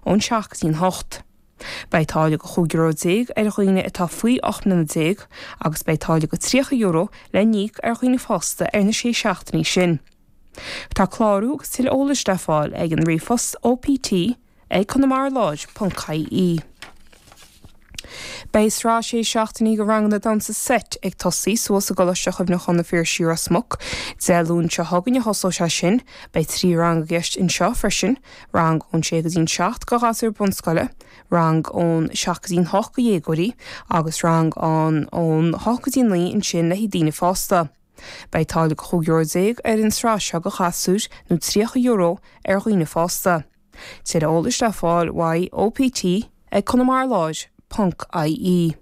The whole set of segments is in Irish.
ón seacht go dtí an hocht. Beidh táille go chúig euro déag ar dhaoine atá faoi ocht mbliana déag agus beidh táille go tríocha euro le n-íoc ar dhaoine fásta ar na sé seachtainí sin. Tá clárú agus tuilleadh eolais le fáil ag an ríomhphost OPT ag Conamara Láir ponc ie. Beidh sraith sé seachtainí de ranganna damhsa seit ag tosaí thiar i gColáiste Cuimhneacháin an Phiarsaigh Ros Muc. Dé Luain seo chugainn a thosóidh sé sin. Beidh trí rang i gceist anseo freisin, rang ón sé go dtí'n seacht go ghasúir bunscoile, rang ón seacht go dtí'n hocht go dhéagóirí agus rang an ón hocht go dtí'n naoi ansin le haghaidh daoine fásta. Beidh táille go €15 ar an sraith seo go ghasúir nó €30 ar dhaoine fásta. Tuilleadh eolais le fáil uaidh, OPT, ag Conamara Láir, ponc, IE.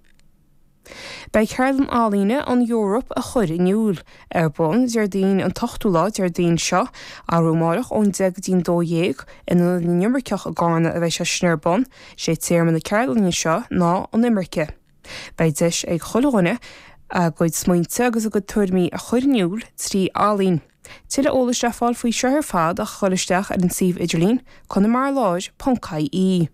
Beidh Ceardlann Ealaíne an Eoraip a chur in iúil, ar bun Déardaoin an t-ochtú lá, Déardaoin seo, arú amáireach ón deich go dtí'n dó dhéag, in Ionad na nImirceach i gCárna a bheidh sé sin ar bun. Sé téama na ceardlainne seo ná An Imirce. Beidh deis ag chuile dhuine a gcuid smaointe agus a gcuid tuairimí a chur in iúil trí ealaín. Tuilleadh eolais le fáil faoi seo ar fad ach a ghoil isteach ar an suíomh idirlín conamarláir.ie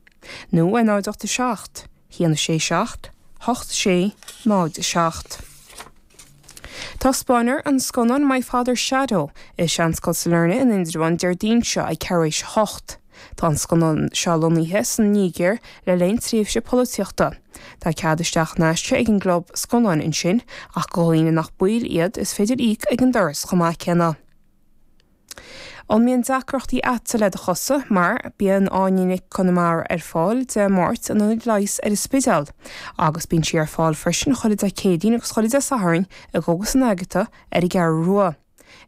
nó ar 087 167 8607. Taispeánfar an scannán My Father's Shadow i Seanscoil Sailearna in Indreabhán Déardaoin seo ag ceathrú éis a hocht. Tá an scannán seo lonnaithe san Nígir le linn tréimhse polaitíochta. Tá cead isteach in aisce ag an gClub Scannán ansin, ach go dhaoine nach baill iad, is féidir íoc ag an doras chomh maith céanna. An mbíonn deacrachtaí agatsa le do chosa? Mar, bíonn Áine Nic Con Iomaire ar fáil Dé Máirt in Ionad Leighis ar an Spidéal, agus bíonn sí ar fáil freisin chuile Dé Céadaoin agus chuile Dé Sathairn i gCógas an Agata ar an gCeathrú Rua.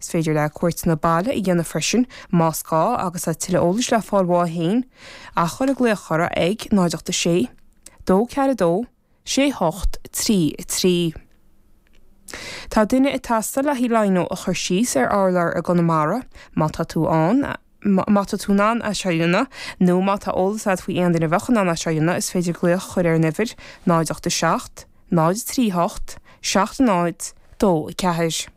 Is féidir léi cuairteanna baile a dhéanamh freisin, más gá, agus tá tuilleadh eolais le fáil uaithi féin, ach cuir glaoch uirthi ag 086 242 68 33. Tá duine ag teastáil le haghaidh lino a chur síos ar urlár i gConamara, má tá tú ann, má tá tú in ann é seo a dhéanamh, nó má tá eolas agat faoi aon duine a bheadh in ann é seo a dhéanamh, is féidir glaoch a chur ar an uimhir 087 038 70 24.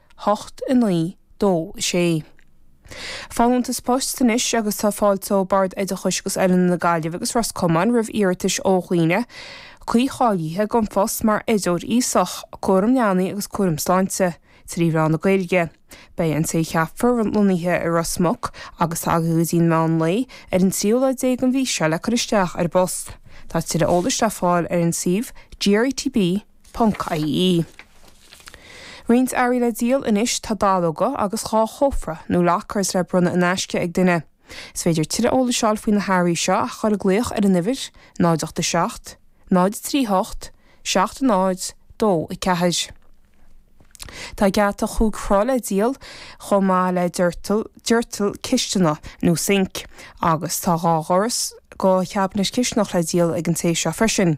hocht, a naoi, dó, a sé. Folúntas poist anois agus tá fáilte ó Bord Oideachais agus Oiliúna na Gaillimhe agus Ros Comáin roimh iarratais ó dhaoine cuí-cháilithe don phost mar Oideoir Aosach, Cúram Leanaí agus Cúram Sláinte, trí mheán na Gaeilge. Beidh an té a cheapfar lonnaithe i Ros Muc agus tá go dtí meán lae ar an tríú lá déag den mhí seo le cur isteach ar an bpost. Tá tuilleadh eolais le fáil ar an suíomh GRETB. ie. Roinnt earraí le díol anois, tá dallóga agus dhá chófra nó lockers le bronnadh in aisce ag duine. Is féidir tuilleadh eolais a fháil faoi na hearraí seo ach a chur ag glaoch ar an uimhir 0 8 7 0 3 8 7 0 2 4. Tá geata chúig throigh le díol chomh maith le doirteal, doirteal cistine nó sinc agus tá dhá dhoras do chabinet cistineach le díol ag an té seo freisin.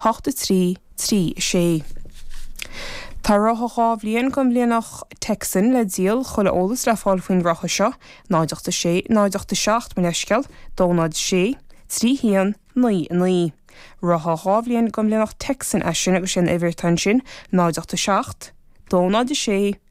hocht a trí, trí a sé. Tá reithe dhá bhliain de mhianach Texel le díol, chuile eolas le fáil faoin reithe seo, náid ocht a sé, náid ocht a seacht mo leithscéal, dó náid a sé, trí haon, naoi a naoi. Reithe dhá bhliain de mhianach Texel é sin agus sé an uimhir atá ansin, náid ocht a seacht, dó náid a sé,